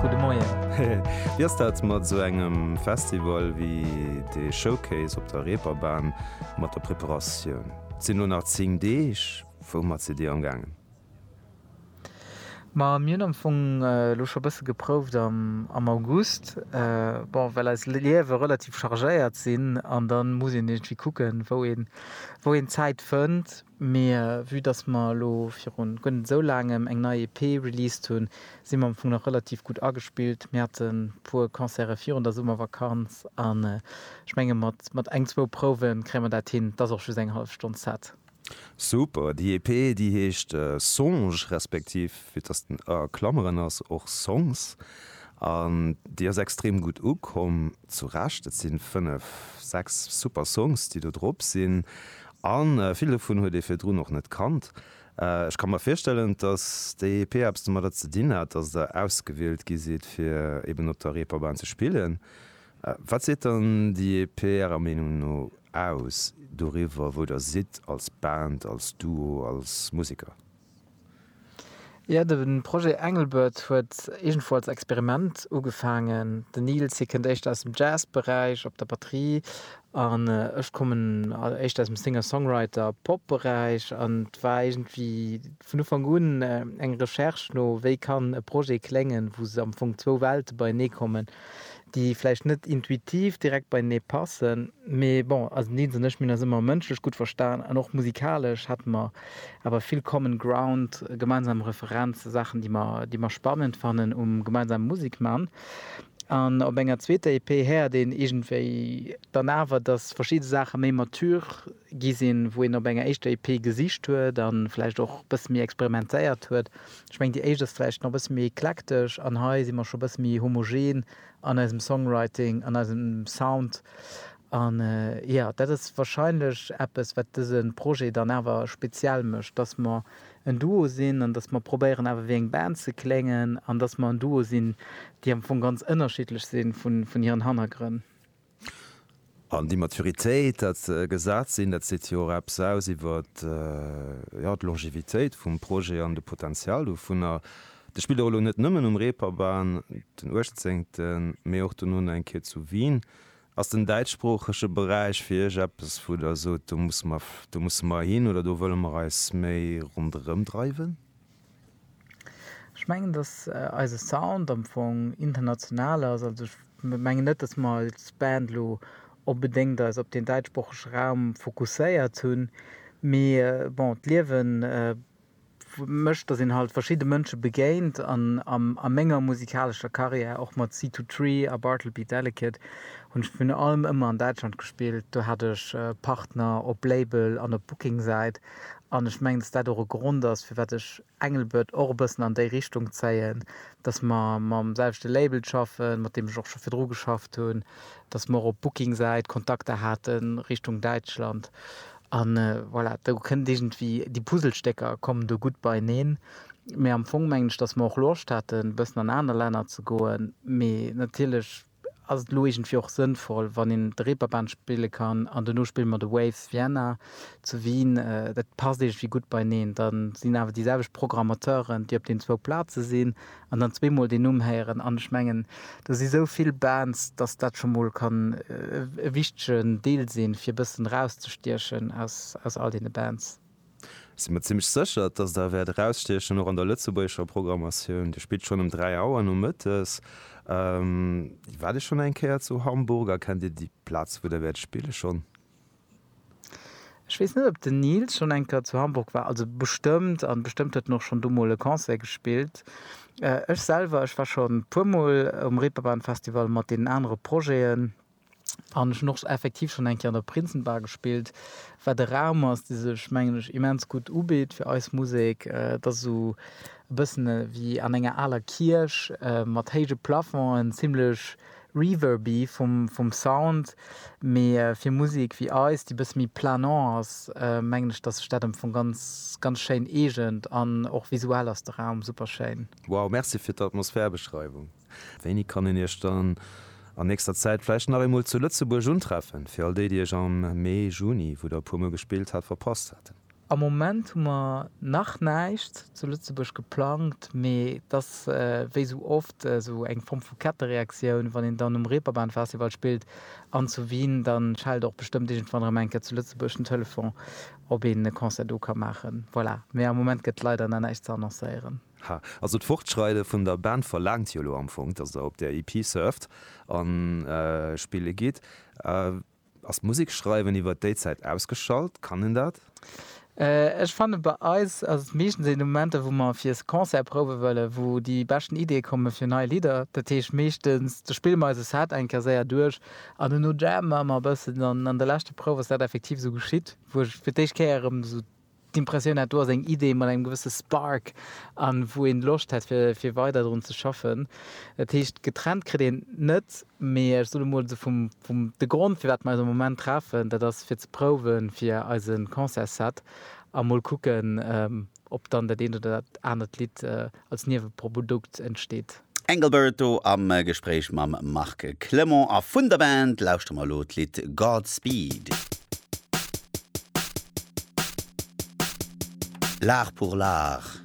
Gudde Moien. Wéi ass dat mat esou engem Festival wéi de Showcase op der Reeperbahn mat der Preparatioun? Et sinn elo nach 10 Deeg. Woumat sidd Dir amgaangen? Ma mir hunn am Fong elo scho e bësse geprouft am August. Bon, well eis Liewe relativ chargéiert sinn an da muss een iergendwéi kucken, wou een d'Zäit fënnt. Mee vue dass mer elo viru guer net esou laangem eng nei EP released hunn, si mer am Fong nach relativ gutt agespillt. Mir hate puer Concerte virun der Summervakanz an ech menge mat eng, zwou Prouwe kréie mer dat hin. Et ass och just eng hallef Stonn Set. Super! Déi EP déi heescht Songe respektiv, vue dass den ë a Klameren ass, och Songs an déi ass extrem gutt ukomm. Zu Recht, et si fënnef, sechs super Songs déi do drop sinn A vill dovun huet ee virdrun och net kannt. Ech ka mer virstellen, datt d'EEP eppes domadder ze dinn hat, datt Der ausgewielt gi sidd, fir eben op der Reeperbahn ze spillen. Wat seet dann d'EEP Ärer Meenung no aus doriwwer, wou Der sidd als Band, als Duo, als Museker? Jo, de Projet Engelbert huet iergendwou als Experiment ugefaangen. Den Nils, hie kënnt éischter aus dem Jazzberäich op der Batterie an ech kommen éischter aus dem Singer-Songwriter-Pop-Beräich. An et war iergendwéi vun Ufank un eng Recherche no, wéi kann e Projet kléngen, wou am Fong zwou Welte beienee kommen. déi vläicht net intuitiv direkt beienee passen, mee bon, den Deens an ech, mir hunn eis ëmmer mënschlech gutt verstan an och musikalesch hate mer awer vill common ground, gemeinsam Referenzen, Saachen, déi mer, déi mer spannend fannen um gemeinsame Musek man. An op enger zweeter EP héiert een iergendwéi dann awer, dass verschidde Saache méi mature gi sinn, wou een op enger éischter EP gesicht huet a vläicht och e bësse méi experimentéiert huet. Ech mengen, déi éischt ass vläicht nach e bësse méi eklektesch an hei si mer scho e bësse méi homogen an eisem Songwriting, an eisem Sound. An jo, dat ass warscheinlech eppes, wat dëse Projet dann awer speziell mécht, dass mer en Duo sinn an dass mer probéieren, awer wéi eng Band ze kléngen an dass mer en Duo sinn, déi am Fong ganz ënnerschiddlech si vun hiren Hannergrënn. An déi Maturitéit, dat gesat sinn, dat seet jo och eppes aus iwwer, jo, d'Longevitéit vum Projet an de Potenzial dovunner. Dat spillt och elo net nëmmen um Reeperbahn, den uechtzéngten, mee och dono nach eng Kéier zu Wien. Ass den däitschsproochege Beräich fir Iech eppes, wou Der sot, do musse mer, do musse mer hin oder do wëlle mer eis méi ronderëm dreiwen? Ech mengen, datt eise Sound am Fong international ass. Also ech mengen net, datt mer als Band elo onbedéngt eis op deen däitschsproochege Raum fokusséiert hunn, mee bon, d'Liewe mécht, datt een halt verschidde Mënsche begéint an a menger musikalescher Karriär, och mat Seed To Tree a Bartleby Delicate, hunn ech virun allem ëmmer an Däitschland gespillt. Do hat ech Partner op Label an op Booking-Säit, An ech mengen, dass dat och e Grond ass, firwat ech Engelbert och e bëssen an déi Richtung zéien, dass mer mam selwechte Label schaffen, mat deem ech och scho virdru geschafft hunn, dass mer och op Booking-Säit Kontakter hate Richtung Däitschland. An voilà, do kënnt iergendwéi, déi Puzzlestécker kommen do gutt beieneen. Mee am Fong mengen ech, dass mer och Loscht haten, e bëssen an aner Länner ze goen. Mee natierlech ass et elo iergendwéi och sënnvoll, wann een de Reeperbahn spille kann an duerno spille mer de Waves Vienna zu Wien. Dat passt iergendwéi gutt beieneen. Da sinn awer déi selwecht Programmateuren, déi op deenen zwou Plaze sinn an dann zweemol deen Numm héieren. An ech mengen, do si sou vill Bands, datt dat scho mol kann e wichtegen Deel sinn, fir e bëssen erauszestiechen aus all deene Bands. Sinn mer zimmlech sécher, dass Der wäert erausstiechen, och an der lëtzebuergescher Programmatioun. Dir spillt schonn ëm dräi Auer nomëttes, waart Dir schonn eng Kéier zu Hamburg a kennt Dir déi Plaz, wou Der wäert spille schonn? Ech weess net, ob den Nils schonn eng Kéier zu Hamburg war. Also bestëmmt, a bestëmmt huet en och schonn do mol e Concert gespillt. Ech selwer, ech war schonn e puermol um Reeperbahn-Festival mat deenen anere Projeten. An ech hunn och effektiv schonn eng Kéier an der Prinzenbar gespillt, wat e Raum ass, dee sech, mengen ech, immens gutt ubitt fir eis Musek. Et ass esou e bëssen ewéi an enger aler Kierch, mat héije Plafongen, zimmlech reverby vum Sound, mee fir Musek ewéi eis, déi e bësse méi planant ass, mengen ech, dass sech dat am Fong ganz, ganz schéin eegent. An och visuell ass de Raum super schéin. Wow, merci fir d'Atmosphärbeschreiwung. Wéini kann een Iech dann an nächster Zäit vläicht nach eemol zu Lëtzebuerg untreffen, fir all déi, déi Iech am Mee, Juni, wou Der e puermol gespillt hat, verpasst haten? Am Moment hu mer nach näischt zu Lëtzebuerg geplangt, mee et ass wéi esou oft esou eng Form vu Kettereaktioun, wann een dann um Reeperbahnfestival spillt an zu Wien, da schellt och bestëmmt iergendwann erëm eng Kéier zu Lëtzebuerg den Telefon, ob een e Concert do ka maachen. Voilà, mee am Moment gëtt leider nach näischt ze annoncéieren. Ha, also d'Fortschreide vun der Band verlaangt jo elo am Fong, dass der op där EP surft a spille gitt. Ass d'Musek schreiwen iwwer déi Zäit ausgeschalt? Kann een dat? Ech fanne bei eis ass et meeschtens een Momenter, wou mer fir Concert prouwe wëllen, wou déi beschten Iddie komme fir nei Lidder. Dat heescht meeschtens, do spille mer eise Set eng Kéier séier duerch an duerno jammen mer e bëssen. An an de leschte Prouwen ass dat effektiv esou geschitt, wou ech fir d'éischt Kéier erëm esou d'Impressioun hat do ass eng Idee mat engem gewësse Spark an wou een Loscht hätt fir weider drun ze schaffen. Dat heescht getrennt kritt een net, mee ech soen emol esou vum de Grond firwat mer eis am Moment treffen, dat ass fir ze prouwen fir eisen Concertsset a mol kucken op dann dat eent oder dat anert Lidd als Nieweprodukt entsteet. Engelbert do am Gespréich mam Marc Clement. A vun der Band lauschtere mer elo d'Lidd Godspeed. L'art pour l'art.